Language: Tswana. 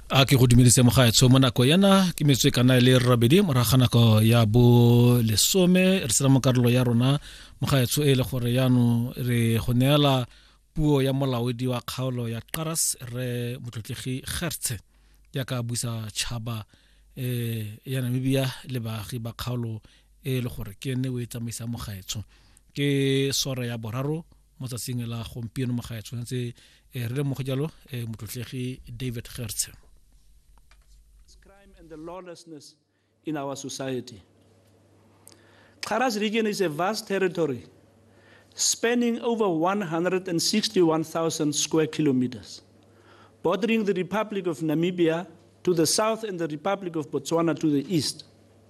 a ke go dumedise mogaetsho mo nako yana ke metswe kana e le rabedi moraga nako ya bo lesome re sena mo karolo ya rona mogaetsho e le gore yano re go neela puo ya molaodi wa kgaolo ya qaras re motlotlegi gertse ya ka busa tšhaba um ya namibia le baagi ba kgaolo e le gore ke ne o e tsamaisa mogaetsho ke sore ya boraro mo tsatsing la gompieno mo gae tshwanetse eh, re lemoge jalo eh, motlotlegi david gertshe crime and the lawlessness in our society Xaras region is a vast territory spanning over 161,000 square kilometers, bordering the Republic of Namibia to the south and the Republic of Botswana to the east.